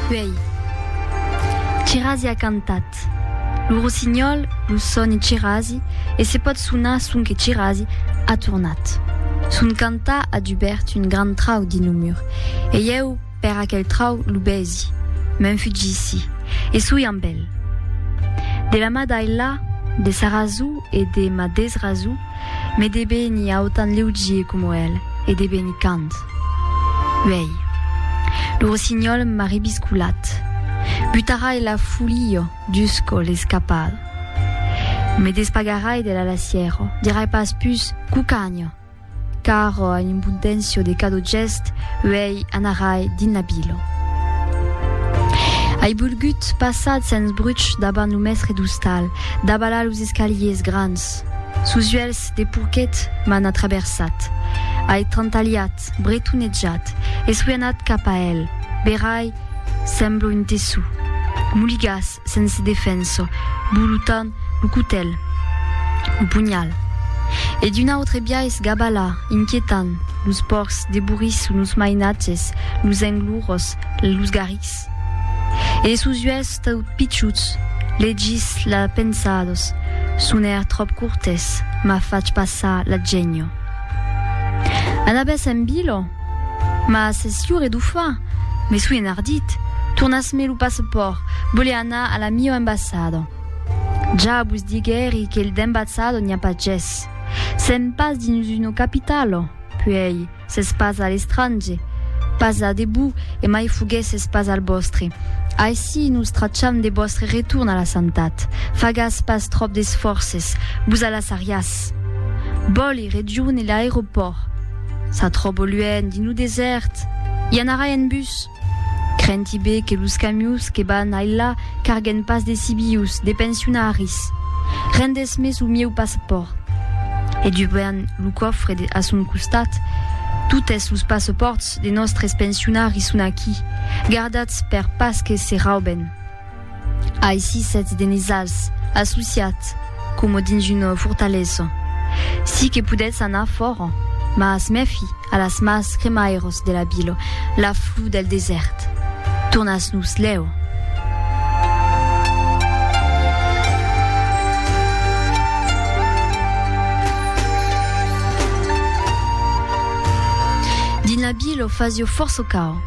Uèi, Chirasi a cantat. Lo rossinhòl, lo sòni Chirasi, e se pòt sonar sonque Chirasi, a tornat. Son cantar a dubèrt un grand trau dins lo mur, e ieu per aquel trau lo besi, m'enfugissi, e soi amb el. De la ma d'Ailà, de sa rasó e de ma desrasó, me devenir autant leugier coma el, e devenir cant. Uèi, lo rossinhòl m'a rebiscolat, butarà e la folia dus còl escapal. Me despagarai de la lassièra, dirai pas pus cucanha, car a impuntencio de cada gèst, uèi anarai dins la vila. Ai bolgut passat sens bruch daba lo mèstre d'ostal, daba la los escaliers grans, Sos uèlhs de porquet m'an atraversat. Ai trantalhat, bretonejat e soi anat cap a el. Berai, semblo un tessó. Moligas, sense defensa, bolotant lo cotèl, lo punhal. E d'un autre biais gabala, inquietant, los pòrcs deboriço, los mainatges, los englorós, los garrics. E de sos uèlhs tau pichuts, legis la pensados, sonèr tròp cortès, m'a fach passar la genio. Anabes en bilo? Mas es jure d'o far? Me soi enardit, tornas-me lo passepòrt, vole anar a la miò embassada. Ja vos diguèri que d'embassada n'i a pas ges. Sèm pas dins una capitala, puèi, S'es pas a l'estrange, pas a debut e mai fogues es pas al bòstre. Aicí nos tracham de bòstre retorn a la santat. Fagas pas tròp d'esfòrces, vos alassariás. Bòli, region e l'aeropòrt. S'atròbo luènh, dins lo desèrt. I anarai en bus. Crenti be que los camius que van ailà carguen pas de sibius, de pensionaris. Rendes me su mieu passapòrt. E dubant lo còfre de a son costat, Totes los passapòrts de nòstres pensionaris son aquí, gardatz per pas que se rauben. Aicí sètz de nosals, associats, coma dins una fortalesa. Sí que podètz anar fòra, mas mèfi a las mals cremairas de la vila, la flor del desèrt. Tornatz-nos lèu. Dins la vila fasiá fòrça caud.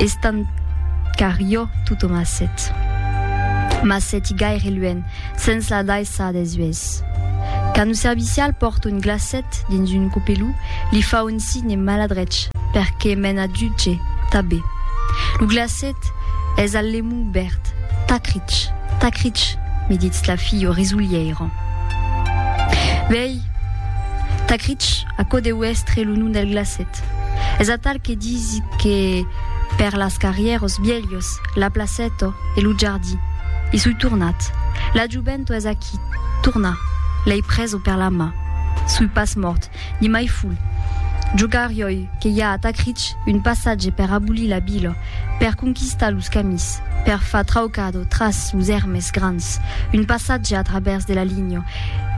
Estant car jo tothom a set. Mas seti gaire luènh, sens la daissar des uèlhs. Quand lo servicial pòrta un glacet dins un copelou, li fa un signe maladrech per que me'n adjuge tabé. Lo glacet es al lemon bèrt. Tacrich, tacrich, me ditz la filha resolhèira. Vei, tacrich, Aquò deu èstre lo nom del glacet. Es atal que disi que per las carrièros vielhos, la placèto e lo jardí. I soi tornat. La jovento es aquí, torna. L'èi preso per la mà. Soi pas mòrt, ni mai ful. Jo carioi que i a a Tacrich un passatge per abolir la vila, per conquistar los camins, per far traucado tras los èrmes grans, un passatge a travèrs de la linha,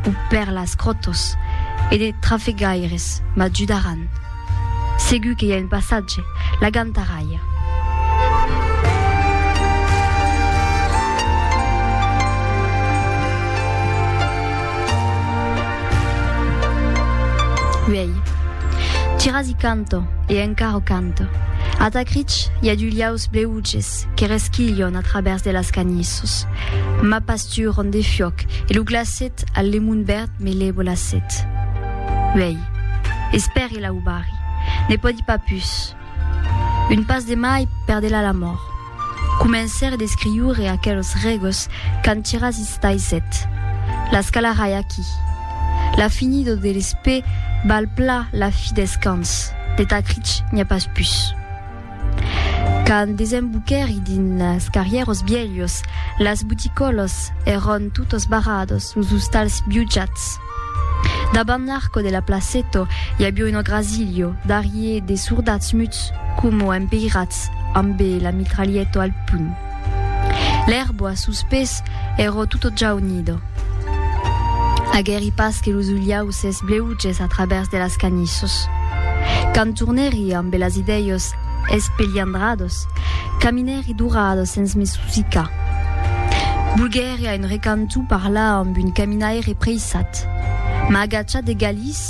o per las cròtos e de trafegaires m'ajudaràn. Segur que i a un passatge, la Gantaralha. Uèi, tirasi canto e encara canto. Atacrich i a d'ulhaus bleuges que resquilhon a travèrs de las canissos. M'a pas Tu rondé fiòc, e lo glacet al lemon verd me lè bolacet. Uèi, espèri la ubari, ne pòdi pas pus. Un pas de mai perdela la mòrt. Comencèré d'escriure aquelos regos qu'an tirats istaisèt. Las calarai aquí. La finido de l'espè val pla la fi deth cans, de Tacrich n'i a pas pus. Quand desemboquèri dins las carrièros bielhos, las boticòlos èron totos barrados, los ostals biujats. Dabant l'arco de la placeto i avió un ograsilho darrier de sordats muts coma empeirats ambe la mitralhèto al punh. L'erba sus pes ero tuto jaunido. Aguèri pas que los ulhaus es bleuges a travèrs de las canissos. Quand tornèri ambe las idèios espeliandrados, caminèri d'urado sens me susicar. Volguèri a un recanto parlar amb un caminaire preissat. M'agachà de galís.